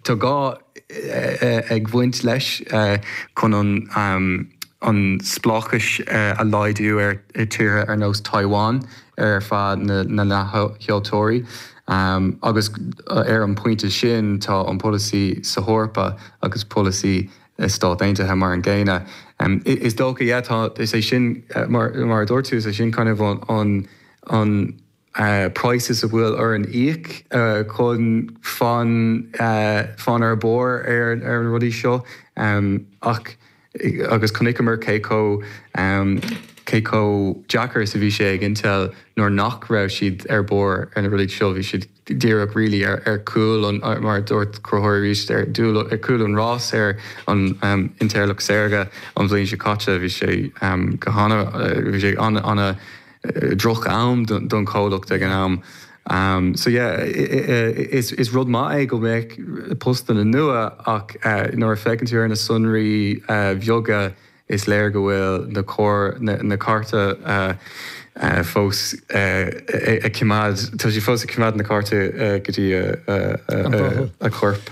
Tá gá ag bhaint leis chun an spleáchas a laghdú ar tíortha ar nós Taiwan ar feadh na leathsheoltóirí agus ar an bpointe sin tá an polasaí san Eoraip agus polasaí sna Stáit Aontaithe mar an gcéanna. Is dócha, yeah, tá, is é sin, mar a dúirt tú, is é sin kind of an. price a bhfuil orainn íoc chun fan fan ar barr ar na rudaí seo ach agus chonaiceamar cé chomh cé chomh deacair is a bhí sé ag Intel nuair nach raibh siad ar barr ar na rudaí seo bhí siad díreach really ar ar chúl an mar a dúirt Conchúr arís ar dúil ar chúl an rás ar an intleacht saorga an bhliain seo caite bhí sé go hana bhí sé an an droch am don comhlacht ag an am so yeah is rud maith é go mbeadh postanna nua ach nuair a fhéachann tú ar na sonraí bheaga is léir go bhfuil na cárta fós ag coimeád tá siad fós ag coimeád na cárta go dtí a chorp.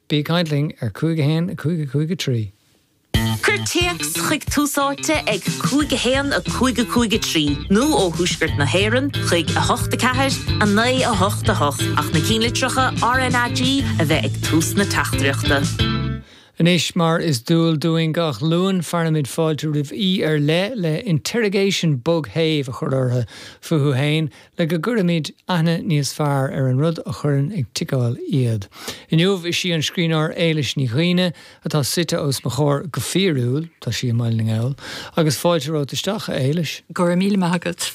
Bí ag caint linn ar cúig a haon a cúig a cúig a trí. Cuir téacs chuig Tús Áite ag a cúig a haon a cúig a cúig a trí nó ó Thuaisceart na hÉireann chuig a hocht a ceathair a naoi a hocht a hocht ach na cinnlitreacha RnaG a bheith ag tús na teachtaireachta. Anois mar is dual dúinn gach Luan fearaimid fáilte roimh aoi ar leith le interrogation bog séimh a chur orthu fúthu féin le go gcuirfimid aithne níos fearr ar an rud a chuireann ag ticeáil iad. Inniu is sí an scríbhneoir Éilis Ní Dhuibhne atá suite os mo chomhair, go fíorúil, tá sí i mBaile na nGall. Agus fáilte romhat isteach, a Éilis. Go raibh míle maith agat.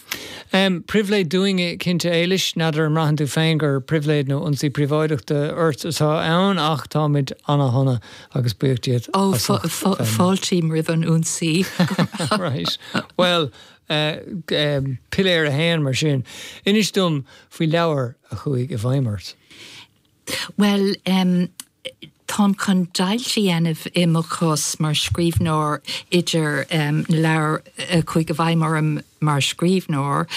Pribhléid dúinne, cinnte. Éilis, n'fheadar an mbraitheann tú féin gur pribhléid nó ionsaí príobháideachta ort atá ann, ach táimid ana-shona agus buíoch díot as ucht. Fáiltím roimh an ionsaí. Right. Bhuel, Piléar 1, Mar sin, inis dom faoi leabhar a chuaigh i bhfeidhm ort. Bhuel, táim chun deighilt a dhéanamh i mo chás mar scríbhneoir idir na leabhair a chuaigh i bhfeidhm orm mar scríbhneoir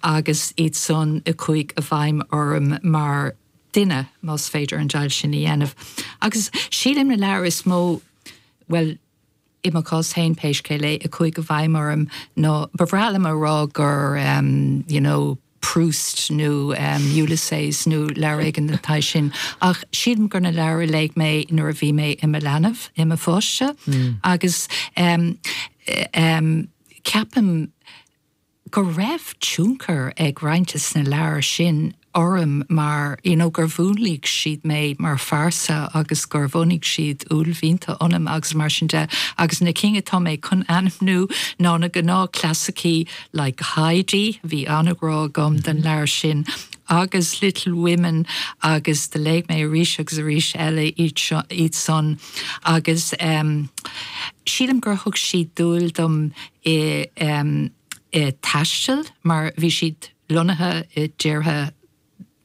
agus iadsan a chuaigh i bhfeidhm orm mar dhuine, más féidir an deighilt sin a dhéanamh. Agus sílim na leabhair is mó, bhuel, I mo chás féin, pé scéal é, a chuaigh i bhfeidhm orm nó ba bhreá liom a rá gur you know Proust nó Ulysses nó leabhar éigin den tsaghas sin ach sílim gur na leabhair a léigh mé nuair a bhí mé i mo leanbh, i mo pháiste agus em, em, ceapaim. go raibh tionchar ag roinnt de na leabhair sin orm mar you know gur mhúnlaigh siad mé mar phearsa agus gur bhunaigh siad uaillmhianta ionam agus mar sin de agus na cinn atá mé chun ainmniú ná na gnáth clasaicí like Heidi, bhí an-ghrá agam don leabhar sin, agus Little Women agus do léigh mé arís agus arís eile iad san agus em sílim gur thug siad dúil dom i dtaisteal mar bhí siad lonnaithe i dtíortha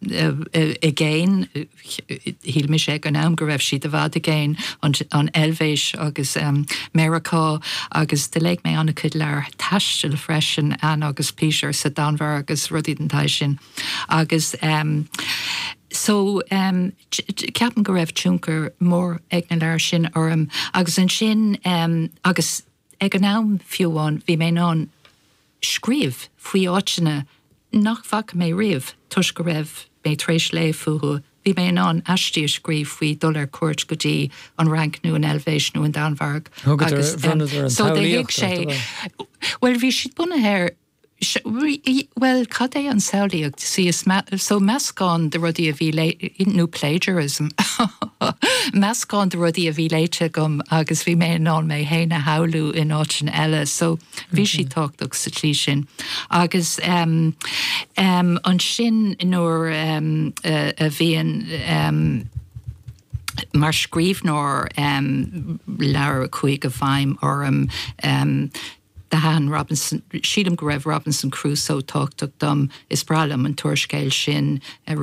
i gcéin, shíl mise ag an am go raibh siad i bhfad i gcéin, an Eilvéis agus Meiriceá agus do léigh mé an-chuid leabhar taistil freisin, Ann agus Peter sa Danmhairg agus rudaí den tsaghas sin agus so ceapaim go raibh tionchar mór ag na leabhair sin orm agus ansin agus. Ag an am fiú amháin bhí mé in ann scríobh faoi áiteanna nach bhfaca mé riamh toisc go raibh mé tar éis léamh fúthu, bhí mé in ann aistí a scríobh faoi dhul ar cuairt go dtí an Fhrainc nó an Eilvéis nó an Danmhairg agus, em, so they thug sé, bhuel bhí siad bunaithe ar. Bhuel, cad é an samhlaíocht? Sea, is so, meascán de rudaí a bhí léite, nó plagiarism, meascán de rudaí a bhí léite agam agus bhí mé in ann mé féin a shamhlú in áiteanna eile, so, bhí siad tábhachtach sa tslí sin. Agus ansin nuair a bhíonn, mar scríbhneoir, leabhar a chuaigh i bhfeidhm orm, Do thaitin Robinson, Sílim go raibh Robinson Crusoe tábhachtach dom, is breá liom an t-úrscéal sin.